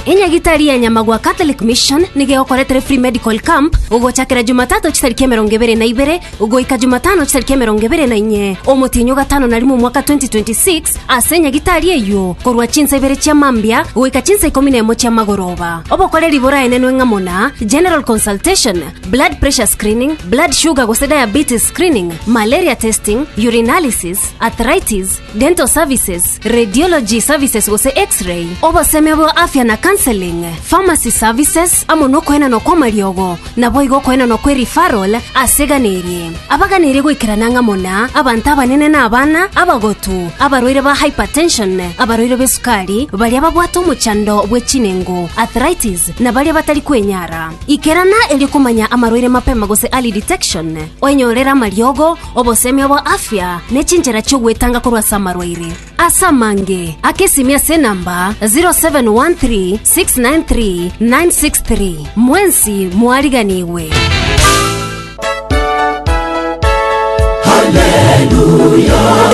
enyagitari ya nyamagwa catholic mission nigo egokoretera free medical camp gogochakera jumatatu chitariki emerongo ebere na ibere goika jumatano chitariki emerongo ebere na inye omotienyo gatano na rimo omwaka 2026 ase enyagitari eyio korwa chinsa ibere chia mambia goika chinsa ikomi na emo chia magoroba obokoreri boraenenwe ng'a muna general consultation blood pressure screening blood sugar gose diabetes screening malaria testing urinalysis arthritis dental services, radiology services gose X-ray, obosemi bwa afya na counseling, pharmacy services, amo nokoenanwa kw'amariogo, naboigo okoenanwa kwe referral ase egana erie. Abaganeirie goikerana ang'amo na abanto abanene na abana, abagotu, abarwaire ba hypertension, abarwaire b'esukari, baria babwate omochando bwe chinengo, arthritis, na baria batari kwenyara. Ikerana erio komanya amarwaire mapema gose early detection, oenyorere amariogo, Obosemi obo afya nechinchera chiogwetanga korwa ase amarwaire ase amange ake simi ase enamba 0713693963 mwensi mwariganigwe.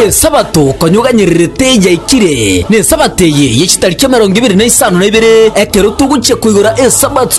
esabato konyuganyererete yaikire nesabato eye yechitariki emerongo ibere na isano na ibere ekero togochia koigora esabato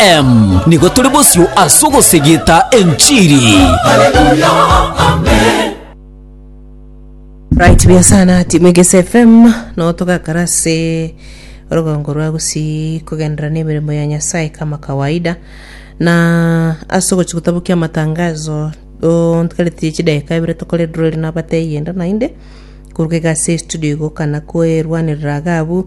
Em, nigo tore bosio ase ogosegeta enchiri. right buya sana timu egese fm no togakara ase orogongo rwa gusii kogenderera n'emeremo ya nyasaye kama kawaida na ase ogochi gotabokia amatangazo ontikaretie chidakika ibere tokore draw ere nabateyie enda naende koruga iga ase estudio igo kana kwerwanerera iga abwo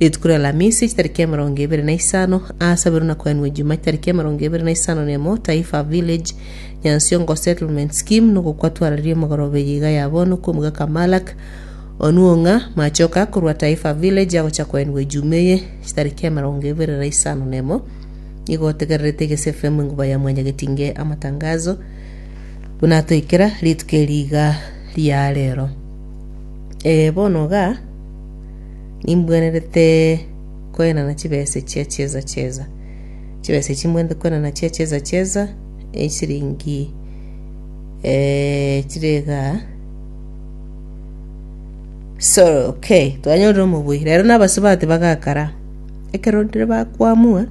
Rituko ri'Alamisi echitariki emerongo ebere na isano, aasaberwe na koenwa ejuma echitariki emerongo ebere na isano na emo, Taifa Village, Nyansiongo Settlement Scheme, nogokwa twararie emegorobe eye iga ya bono kw'omogaka Malak Onuong'a, machoka akorwa Taifa Village agocha koenwa ejuma eye echitariki emerongo ebere na isano na emo. Nigo otegererete egese FM enguba ya mwanyagetinge amatangazo buna atoikera rituko eri iga ria rero. Ee, bono iga. Nimbwenerete koenana chibesa echia chieza chieza, chibesa echi nimbwenerete koenana chia chieza chieza, esiringi eh, chire igaa so okay twanyorire omobui. Rero nabasubati bagakara, ekero ndire bakwamua.